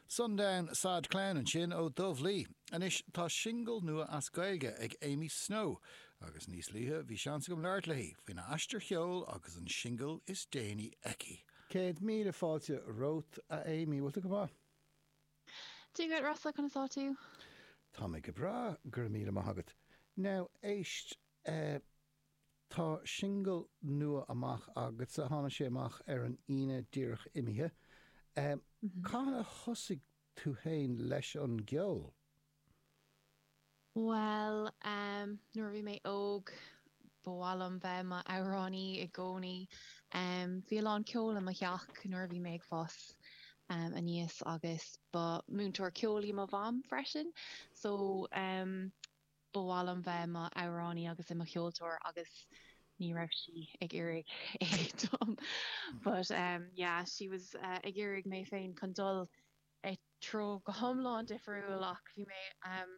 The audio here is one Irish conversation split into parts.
Sundown Sad Clown ansin ó Dubh Lee. Anois tá singil nua as Gaeilge ag Amy Snow agus níos luaithe bhí seans agam labhairt léi faoina aistear ceoil agus an singil is déanaí aici. Céad míle fáilte romhat, a Amy. Bhfuil tú go maith? Dia dhuit, Rossa, conas atá tú? Tá mé go breá, go raibh míle maith agat. Now, éist. Tá singil nua amach agatsa. Tháinig sé amach ar an Aoine díreach imithe. Cathain a thosaigh tú féin leis an gceol? Bhuel, nuair a bhí mé óg, ba mhaith liom bheith mo amhránaí i gcónaí. Bhí a lán ceol i mo theach nuair a bhí mé ag fás aníos agus ba múinteoir ceoil í mo mham freisin. So. Ba mhaith liom bheith i mo amhránaí agus i mo cheoltóir agus ní raibh sí ag iarraidh é dom, but em yeah ní raibh sí... bhí sí ag iarraidh mé féin chun dul i treo go hiomlán difriúil ach bhí mé em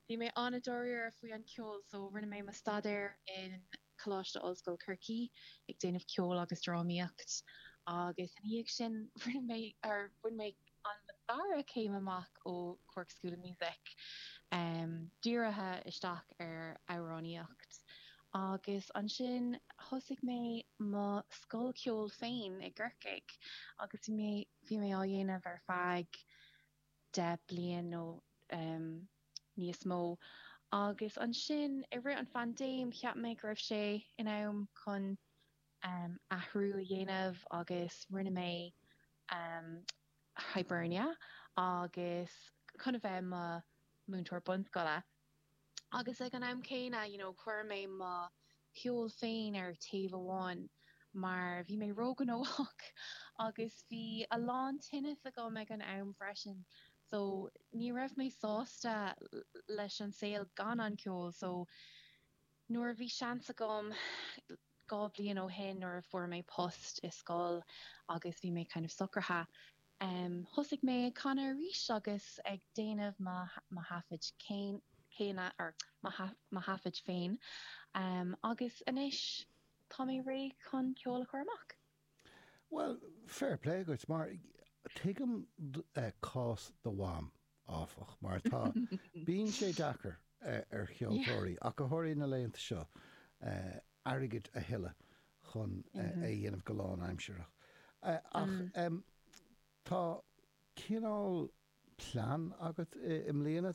bhí mé an-dáiríre faoi an ceol so rinne mé mo staidéar in Coláiste Ollscoil Chorcaí ag déanamh ceoil agus drámaíocht agus ina dhiaidh sin rinne mé, or bhain mé mo dara céim amach ó Cork School of Music ehm dírithe isteach ar amhránaíocht agus ansin thosaigh mé mo scoil ceoil féin i gCorcaigh agus bhí mé, bhí mé á dhéanamh ar feadh deich bliain nó ehm. níos mó. Agus ansin, i rith an phaindéim, cheap mé go raibh sé in am chun athrú a dhéanamh agus rinne mé Hibernia agus chun a bheith mo múinteoir bunscoile. Agus ag an am céanna, you know, chuir mé mo cheol féin ar taobh amháin mar bhí mé róghnóthach agus bhí a lán tinneas agam ag an am freisin so ní raibh mé sásta leis an saol gan an ceol so nuair a bhí seans agam dhá bhliain ó shin nuair a fuair mé post i scoil agus bhí mé kind of socraithe Em, thosaigh mé ag canadh arís agus ag déanamh mo, mo thaifid céan, céanna, er, mo, mo thaifid féin, em, agus anois tá mé réidh chun ceol a chur amach. Bhuel, fair play duit, mar tuigim, eh, cás do mham. áfach, mar atá. Bíonn sé deacair ar cheoltóirí, ach go háirithe na laethanta seo, airgead a thuilleadh chun é a dhéanamh go lánaimsireach. Ach tá cineál plean agat i mbliana.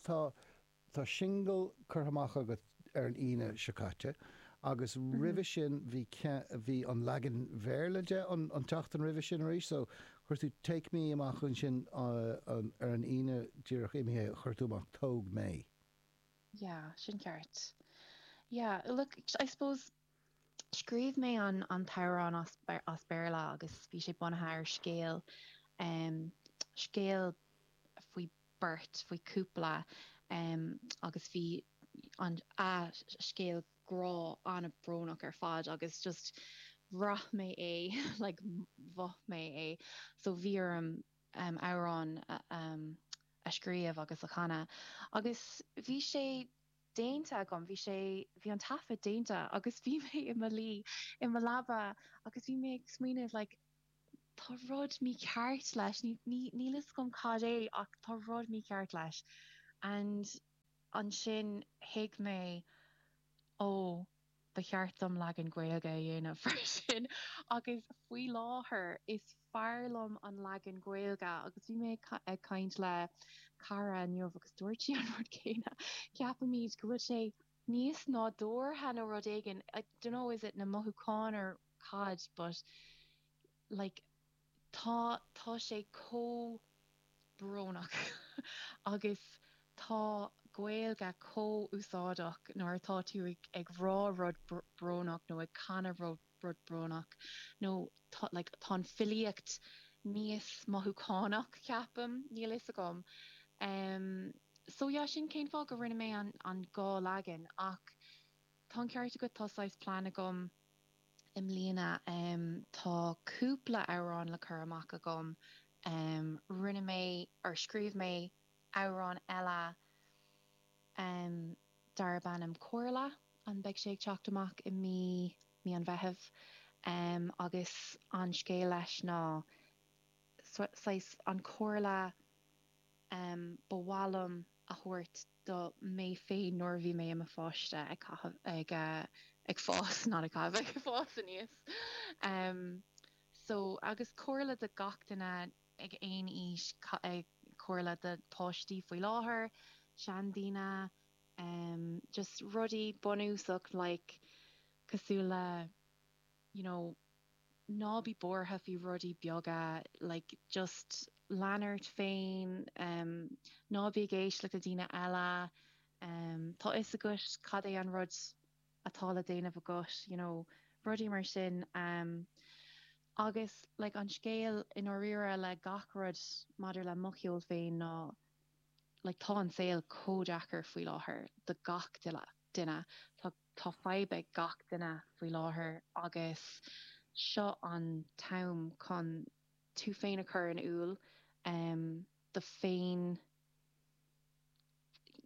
Tá singil curtha amach agat ar an Aoine seo caite agus roimhe sin bhí, bhí an leagan Béarla de an tseachtain roimhe sin arís so chuir tú Take Me amach ansin ar an Aoine díreach imithe chuir tú amach Tóg Mé. Yeah, sin ceart. Yeah, look, I suppose Scríobh mé an an t-amhrán as Béarla agus bhí sé bunaithe ar scéal em scéal faoi beirt faoi cúpla em agus bhí an a scéal grá an-brónach ar fad agus just bhraith mé é like mhothaigh mé é so bhí orm em amhrán a em a scríobh agus a chanadh agus bhí sé déanta agam. Bhí sé, bhí an taifead déanta agus bhí mé i mo luí i mo leaba agus bhí mé ag smaoineamh like tá rud mícheart leis, ní, ní, níl fhios agam cad é ach tá rud mícheart leis and ansin thuig mé oh, Ba cheart dom leagan Gaeilge a dhéanamh freisin agus faoi láthair is fearr liom an leagan Gaeilge agus bhí mé ag caint le cara inniu agus dúirt sí an rud céanna. Ceapaimid go bhfuil sé níos nádúrtha nó rud éigin, I dunno is it na mothúcháin or cad but like, Tá, tá sé chomh brónach agus tá Gaeilge chomh úsáideach nuair atá tú ag rá rud brónach nó ag canadh rud brónach nó like, tá an filíocht níos mothúchánach ceapaim, níl fhios agam. Ehm, so yeah, sin cén fáth go rinne mé an dhá leagan ach tá an ceart agat, tá saghas plean agam. i mbliana. Tá cúpla amhrán le cur amach agam. Rinne mé, or scríobh mé amhrán eile darb ainm Comhairle, and beidh sé ag teacht amach i mí, mí an Mheithimh. Agus an scéal leis ná, saghas, an comhairle ba mhaith liom a thabhairt do mé féin nuair a bhí mé i mo pháiste ag caitheamh ag ag fás not ag caitheamh ag fás aníos em so agus comhairle do gach duine ag aon aois comhairle do páistí faoi láthair, seandaoine em just rudaí bunúsach like cosúil le. you know ná bí buartha faoi rudaí beaga like just lean ort féin em ná bí ag éisteacht le daoine eile em tá fhios agat cad é an rud atá le déanamh agat you know rudaí mar sin em agus like an scéal i ndáiríre le gach rud maidir le mo cheol féin ná like tá an saol chomh deacair faoi láthair do gach duine tá Tá fadhb ag gach duine faoi láthair agus seo an t-am chun tú féin a chur in iúl tú féin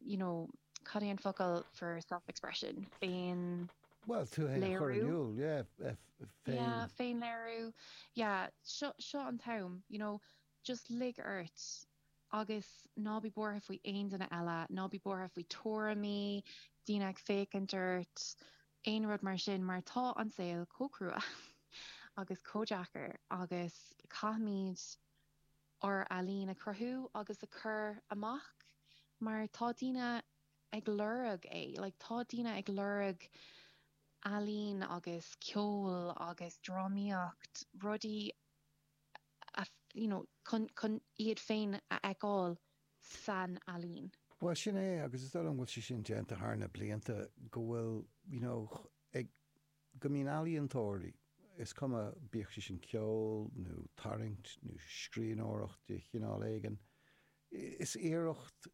you know cad é an focal for self expression? féin Bhuel tú féin a chur in iúl yeah féin féinléiriú yeah seo seo an t-am you know just lig ort Agus ná bí buartha faoi aon duine eile. Ná bí buartha faoi tuairimí, daoine ag féachaint ort, aon rud mar sin mar tá an saol chomh crua agus chomh deacair agus caithfimid ár ealaín a chruthú agus a chur amach mar tá daoine ag lorg é. Like tá daoine ag lorg ealaín agus ceol agus drámaíocht, rudaí. you know, chun, chun iad féin a fheiceáil san ealaín. Bhuel, sin é agus is dóigh liom go bhfuil sé sin déanta thar na blianta go bhfuil, you know, ag, go mbíonn ealaíontóirí, is cuma, bíodh sé sin ceol nó tarraingt nó scríbhneoireacht de chineál éigin, is iarracht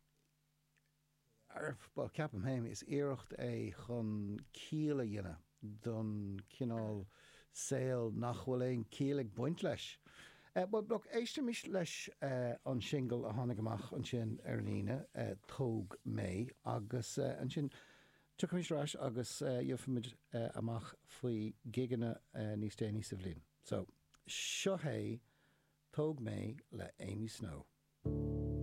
bhuel, ceapaim féin, is iarracht é chun ciall a dhéanamh don chineál saol nach bhfuil aon chiall ag baint leis. Bhuel, look, éistimis leis an singil a tháinig amach ansin ar an Aoine, Tóg Mé, agus ansin tiocfaimid ar ais agus gheobhaimid amach faoi ghigeanna níos déanaí sa bhliain. So, seo hé Tóg Mé le Amy Snow.